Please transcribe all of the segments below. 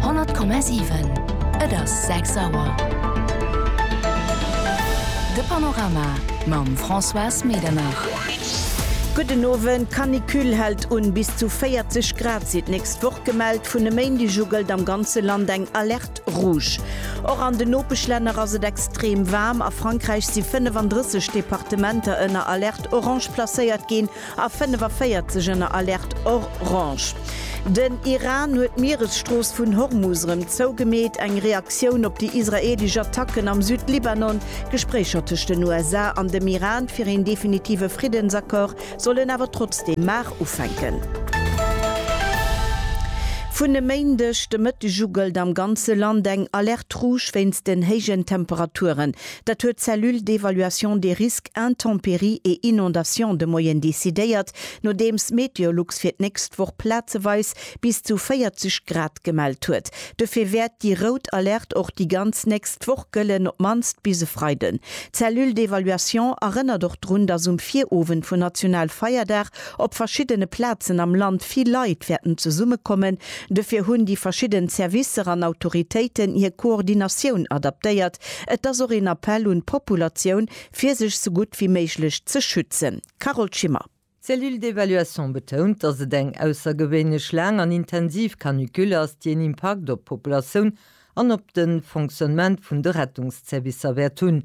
100,7. Et ass 6 Auer. De Panorama mam Françoise Medernach. Gudden Owend. D'Canicule hält un. Bis zu 40 Grad sinn d'nächst Woch gemellt. Vun e Méindeg u gëllt am ganze Land eng Alerte rouge. Och an den Nopeschlänner ass et extrem waarm. A Frankräich si 35 Departementer ënner Alerte orange placéiert ginn. A 45 ënner Alerte orange. Den Iran huet d'Mieresstrooss vun Hormus erëm zougemeet, eng Reaktioun op déi israeelesch Attacken am Südlibanon. D'Gespréicher tëscht den USA an dem Iran fir een definitive Friddensaccord sollen awer trotzdeem mar ufänken. Vun e Méindeg de Mëtteg u gëllt am ganze Land eng Alerte rouge wéinst den héijen Temperaturen. Dat huet d'Cellule d'évaluation des risques intempéries et inondations de Moyenne decidéiert, nodeems Meteolux fir d'nächst Woch plazeweis bis zu 40 Grad gemellt huet. Dofir wäert déi rout Alerte och déi ganz nächst Woch gëllen, op d'mannst bis e Freiden. D'Cellule d'évaluation erënnert och drun, dass um Virowend vun Nationalfeierdag op verschiddene Plazen am Land vill Leit wäerten zesummekommen. Dofir hunn déi verschidden Servicer an Autoritéiten hir Koordinatioun adaptéiert, Et ass och een Appell un d'Populatioun, fir sech esou gutt wéi méiglech ze schützen. Carole Schimmer. D'Cellule d'évaluation betount, datt et eng aussergewéinlech laang an intensiv Canicule ass, déi een Impakt op d'Populatioun an op de Fonctionnement vun de Rettungszervicer wäert hunn.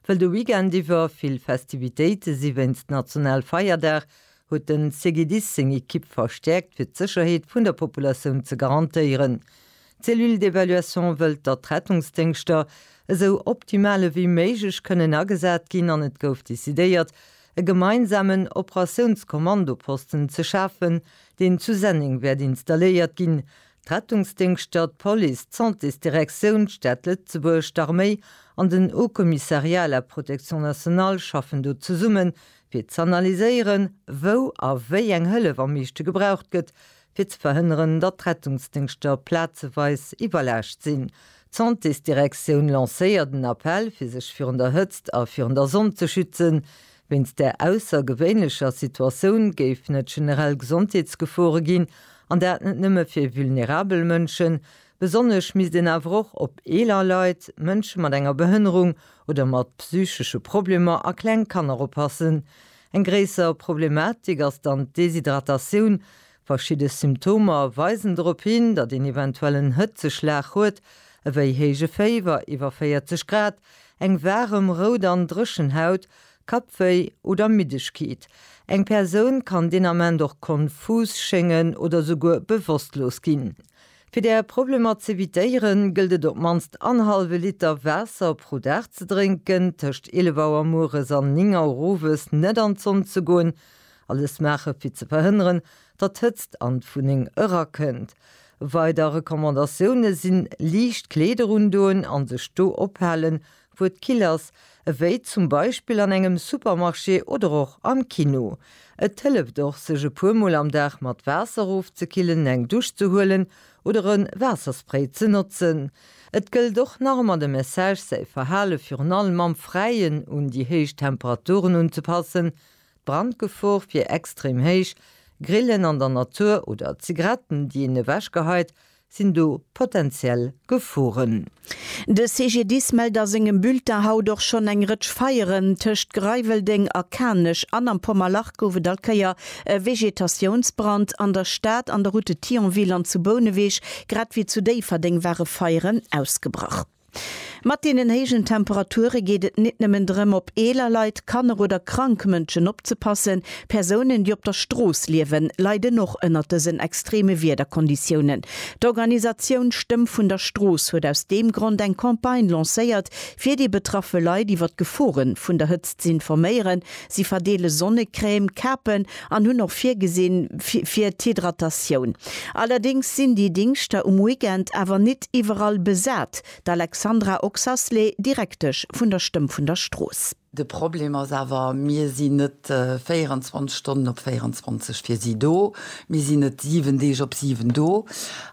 Wëll de Weekend iwwer vill Festivitéite si wéinst Nationalfeierdag, huet de CGDIS seng Ekipp verstäerkt, fir d'Sécherheet vun der Populatioun ze garantéieren. D'Cellule d'évaluation wëllt, datt d'Rettungsdéngschter esou optimal ewéi méiglech kënnen agesat ginn an et gouf decidéiert, e gemeinsamen Operatiounskommandoposten ze schafen, deen zu Senneng wäert installéiert ginn. D'Rettungsdéngschter, d'Police, d'Santésdirektioun, d'Stad Lëtzebuerg, d'Arméi an den Haut Commissariat à la Protection nationale schaffen do zesumme fir z'analyséieren, wou a wéi eng Hëllef am meeschte gebraucht gëtt, fir ze verhënneren, datt d'Rettungsdéngschter plazeweis iwwerlaascht sinn. D'Santésdirektioun lancéiert en Appell, fir sech virun der Hëtzt a virun der Sonn ze schützen. Wéinst där aussergewéinlecher Situatioun géifen et generell Gesondheetsgefore ginn, an dat net nëmme fir vulnerabel Mënschen. Besonnesch misst een awer och op eeler Leit, Mënsche mat enger Behënnerung oder mat psychesche Problemer a kleng Kanner oppassen. Eng gréisser Problematik ass dann d'Deshydratatioun. Verschidde Symptomer weisen drop hin, datt een eventuell en Hëtzeschlag huet, ewéi héije Féiwer iwwer 40 Grad, eng waarem, rout an dréchen Haut, Kappwéi oder Middegkeet. Eng Persoun kann deen Ament och konfus schéngen oder souguer bewosstlos ginn. Fir där Problemer z'evitéieren, gëllt et op d'mannst en hallwe Liter Waasser pro Dag ze drénken, tëscht 11 Auer mueres an 9 Auer owes net an d'Sonn ze goen, alles maache fir ze verhënneren, datt d'Hëtzt an d'Wunneng erakënnt. Weider Recommandatioune sinn, liicht Kleeder undoen an sech do ophalen, wou et kill ass, ewéi zum Beispill an engem Supermarché oder och am Kino. Et hëlleft och, sech e puer Mol am Dag mat Waasser ofzekillen, eng Dusch ze huelen oder e Waasserspray ze notzen. Et gëllt och nach ëmmer de Message, säi Verhale virun allem am Fräien un déi héich Temperaturen unzepassen. D'Brandgefor wier extrem héich. Grillen an der Natur oder Zigaretten, déi een ewechgeheit, Sinn do potentiell Geforen? De CGDIS mellt a sengem Bulletin haut och schonn eng Rëtsch Feieren. Tëscht Greiweldeng a Kanech an am Pommerlach gouf et all Kéier e Vegetatiounsbrand. An der Stad, an der Route de Thionville an zu Bouneweg, grad ewéi zu Déifferdeng ware Feieren ausgebrach. Mat deenen héijen Temperature geet et nit nëmmen drëm, op eeler Leit, Kanner oder krank Mënschen opzepassen. Persounen, déi op der Strooss liewen, leiden och ënnert dësen extreme Wiederkonditiounen. D'Organisatioun Stëmm vun der Strooss huet aus deem Grond eng Campagne lancéiert, fir déi betraffe Leit iwwer d'Gefore vun der Hëtzt z'informéieren. Si verdeele Sonnecrème, Kapen an hunn och virgesinn fir d'Hydratatioun. Allerdéngs sinn déi Dingschter um Weekend awer nit iwwerall besat. D'Alexandra Oxasley, Direktesch vun der Stëmm vun der Strooss. De Problem ass awer, mir sinn net 24 Stonnen op 24 fir si do, mir sinn net 7 Deeg op 7 do.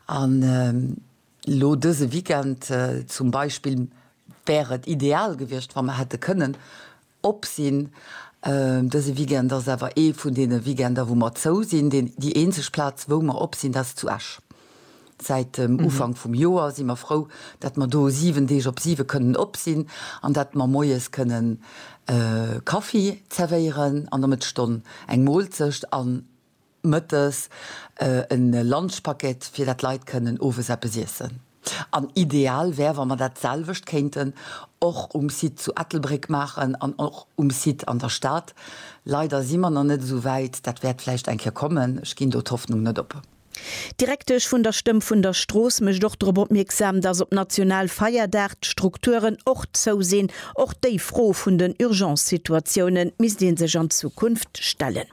An elo dëse Weekend zum Beispill wär et ideal gewiescht, wa mer hätte kënnen, Op sinn. Dëse Weekend ass awer ee vun deene Weekender, wou mer zou sinn. Déi eenzeg Plaz, wou mer op sinn, dat ass zu Esch. Säit dem Ufank vum Joer si mer frou, datt mer do 7 Deeg op 7 kënnen op sinn an datt mer moies kënnen Kaffi zerwéieren an der Mëttesstonn eng Moolzecht an Mëttes e Lunchpaket, fir dat d'Leit kënnen owes eppes iessen. An ideal wär, wa mer dat selwecht kéinten och um Site zu Ettelbréck maachen an och um Site an der Stad. Leider si mer nach net esou wäit. Dat wäert vläicht eng Kéier kommen. Ech ginn do d'Hoffnung net op. D'Direktesch vun der Stëmm vun der Strooss mécht och drop opmierksam, dass op Nationalfeierdag d'Strukturen och zou sinn. Och déi Fro vun den Urgence-Situatiounen misst ee sech an Zukunft stellen.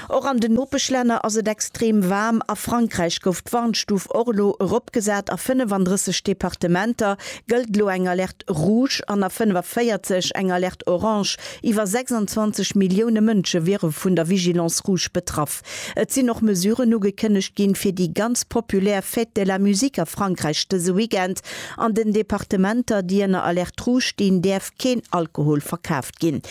Och an den Nopeschlänner ass et extrem waarm. A Frankräich gouf d'Warnstuf och elo eropgesat. A 35 Departementer gëllt elo eng Alerte rouge an a 45 eng Alerte orange. Iwwer 26 Millioune Mënsche wiere vun der Vigilance rouge betraff. Et sinn och Mesuren ugekënnegt ginn, fir déi ganz populär Fête de la musique a Frankräich dëse Weekend. An den Departementer, déi ënner Alerte rouge stinn, däerf keen Alkohol verkaf. geschafft ginn.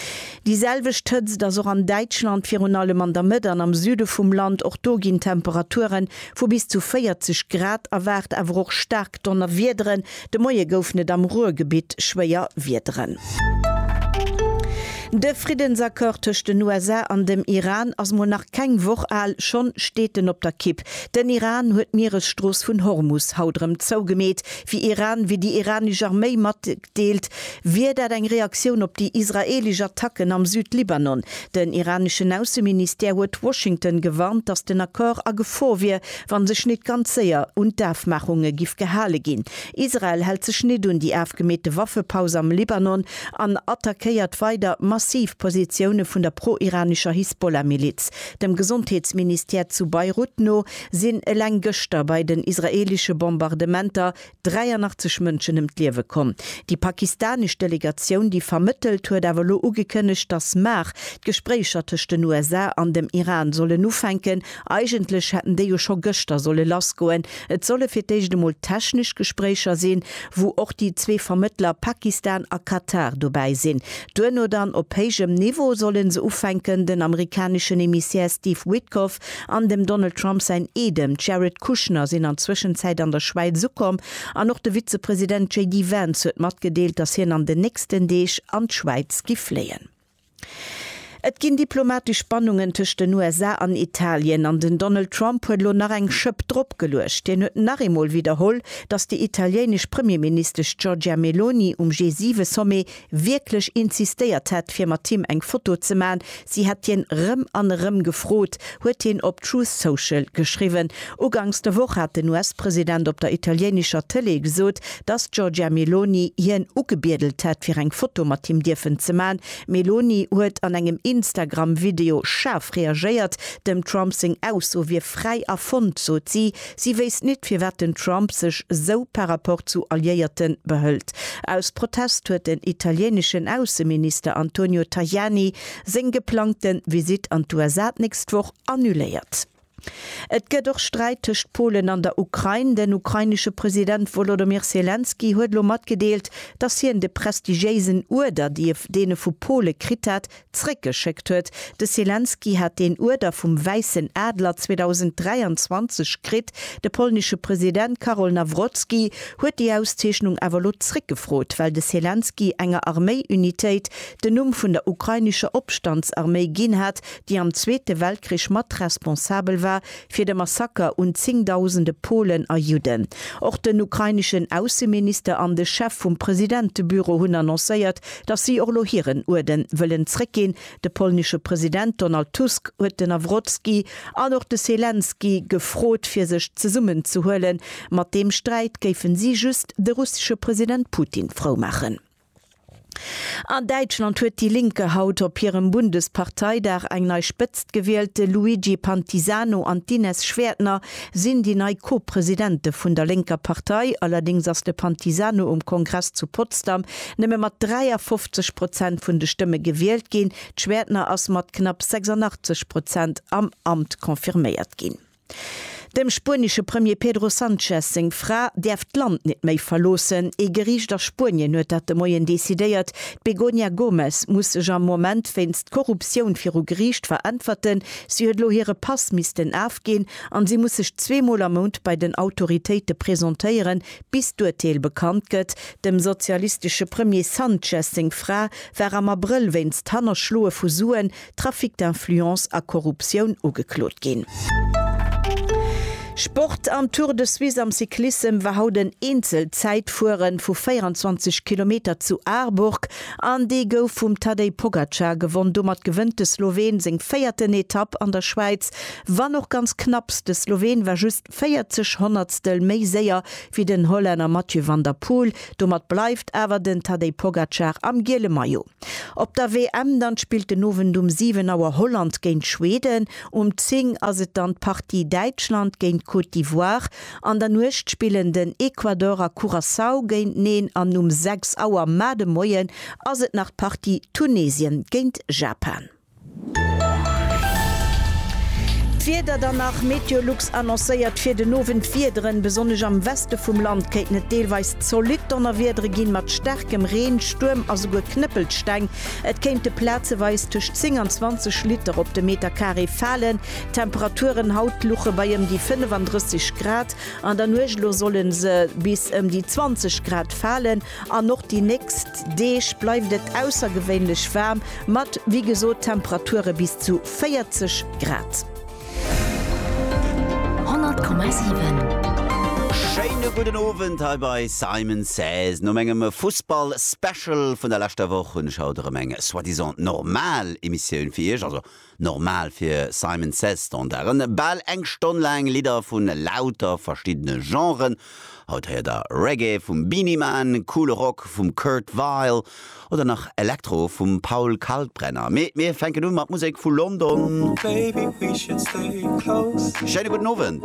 Déi selwecht Hëtzt ass och an Däitschland, virun allem an der Mëtt an am Süde vum Land. Och do ginn Temperature vu bis zu 40 Grad erwaart, awer och staark Donnerwiederen. De Moie goufen et am Ruhrgebitt schwéier Wiederen. De Friddensaccord tëscht den USA an dem Iran ass mol nach keng Woch al, schonn steet en op der Kipp. Den Iran huet d'Mieresstrooss vun Hormus haut erëm zougemeet, wéi Iran, wéi déi iranesch Arméi mat Deelt, wier dat eng Reaktioun op déi israeelesch Attacken am Südlibanon. Den iraneschen Ausseministère huet Washington gewarnt, datt den Accord a Gefor wier, wann sech nit ganz séier un d'Afmaachunge giff gehale ginn. Israel hält sech nit un déi afgemeete Waffepaus am Libanon an attackéiert weider massiv Positioune vun der pro-iranescher Hisbollah-Miliz. Dem Gesondheetsministère zu Beirut no sinn eleng gëschter bei den israeelesche Bombardementer 83 Mënschen ëm d'Liewe komm. Déi pakistanesch Delegatioun, déi vermëttelt, huet awer elo ugekënnegt, datt mar d'Gespréicher tëscht den USA an dem Iran sollen ufänken. Eigentlech hätten déi jo scho gëschter solle lassgoen. Et solle fir d'éischt emol technesch Gespréicher sinn, wou och déi zwee Vermëttler Pakistan a Katar dobäi sinn. Duerno dann op héijem Niveau solle se ufänken. Den amerikaneschen Emissär Steve Witkoff An dem Donald Trump säin Eedem, d'Jared Kushner, sinn an Zwëschenzäit an der Schwäiz ukomm an och de Vizepresident JD Vance huet matgedeelt, datt hien an den nächsten Deeg an d'Schwäiz gi fléien. Et ginn diplomatesch Spannungen tëscht den USA an Italien an den Donald Trump huet elo nach eng Schëpp drop geluecht. Hien huet nach eemol widderholl, datt déi italiéinesch Premierministesch Giorgia Meloni um G7-Sommet wierklech insistéiert hätt fir mat him eng Foto ze man, si hätt hien rëm an erëm gefrot, huet hien op Truth Social geschriwwen. Uganks der Woch hat den US-President op der italiéinescher Tëlee gesot, datt d'Giorgia Meloni hien ugebiedelt hätt fir eng Foto mat him dierfen ze man. D'Meloni huet an engem Instagram-Video schaarf reagéiert, dem Trump seng Ausso wier fräi erfonnt, sot si. Si wéisst nit firwat den Trump sech sou par rapport zu Alliéierten behëlt. Aus Protest huet den italiéinischen Ausseminister Antonio Tajani seng geplangten Visite an d'USA d'nächst Woch annuléiert. Et gëtt och Sträit tëscht Polen an der Ukrain. Den ukrainesche President Wolodomir Selenskyj huet elo matgedeelt, dass hien de prestigiéisen Uerder, dee vu Pole kritt hat, Zréckgeschéckt huet. De Selenskyj hat deen Uerder vum Wäissen Adler 2023 kritt. De polnesche President Karol Nawrocki huet déi Auszeechnung awer elo zréckgefrot, well de Selenskyj enger Arméi-Unitéit den Numm vun der ukrainescher Opstandsarméi ginn hat, déi am Zweete Weltkrich mat responsabel war fir de Massaker un zéngdausende Polen a Judden. Och den ukraineschen Ausseminister an de Chef vum Presidentebüro hunn annoncéiert, datt si och elo hiren Uerden wëllen zréckginn. De polnesche President Donald Tusk huet den Nawrotski an och de Selenskyj gefrot, fir sech zesummenzehuelen. Mat deem Sträit géifen si just de russesche President Putin frou maachen. An Däitschland huet Die Linke haut op hirem Bundesparteidag eng nei Spëtzt gewielt. De Luigi Pantisano an d'Ines Schwertner sinn déi nei Co-Presidente vun der lénker Partei. Allerdéngs ass de Pantisano um Kongress zu Potsdam nëmme mat 53 Prozent vun de Stëmme gewielt ginn. D'Schwertner ass mat knapp 86 Prozent am Amt confirméiert ginn. Dem spuenesche Premier Pedro Sanchez seng Fra däerf d'Land net méi verloossen. Ee Geriicht a Spuenien huet dat de Moien decidéiert. D'Begoña Gómez muss sech am Moment wéinst Korruptioun viru Geriicht veräntwerten. Si huet elo hire Pass missten afginn an si muss sech zwee Mol am Mount bei den Autoritéite presentéieren, bis d'Urteel bekannt gëtt. Dem sozialistesche Premier Sanchez seng Fra war am Abrëll wéinst Hannerschloe vu Suen, Trafic d'influence a Korruptioun ugeklot ginn. Sport, Am Tour de Suisse am Cyclissem war haut en Eenzel-Zäitfuere vu 24 Kilometer zu Aarburg an dee gouf vum Tadej Pogacar gewonn. Domat gewënnt de Sloween seng véierten Etapp an der Schwäiz, wann och ganz knapps. De Sloween war just 40 Honnertstel méi séier wéi den Hollänner Mathieu van der Poel. Domat bleift awer den Tadej Pogacar am giele Maillot. Op der WM dann spillt den Owend um 7 Auer Holland géint Schweden, um 10 ass et dann d'Partie Däitschland géint Côte d'Ivoire. An der Nuecht spillen den Ecuador a Curaçao géinteneen an um 6 Auer mar de Moien ass et nach d'Partie Tunesien géint Japan. D'Wieder dann nach, MeteoLux annoncéiert fir den Owend d'Wiederen, besonnesch am Weste vum Land kéinten et deelweis zolidd Donnerwiedere ginn, mat staarkem Reen, Stuerm a souguer Knëppelsteng. Et kéinte plazeweis tëscht 10 an 20 Liter op de Meterkaree falen. D'Temperaturen haut luche bei ëm déi 35 Grad, an der Nuecht elo solle se bis ëm déi 20 Grad falen. An och déi nächst Deeg bleift et aussergewéinlech waarm, mat wéi gesot Temperature bis zu 40 Grad. 100,7. Schéine gudden Owend hei bei Simon Says. No mengem Fussball-Special vun der leschter Woch hunn ech haut erëm eng soi-disant normal Emissioun fir Iech, also Normal fir Simon Says Standarden, bal eng Stonn laang Lidder vu lauter verschiddene Genren. Haut héiert der Reggae vum Beenie Man, coole Rock vum Kurt Vile oder nach Elektro vum Paul Kalkbrenner. Mee mir fänken u mat Musek vu London. Schéine gudden Owend.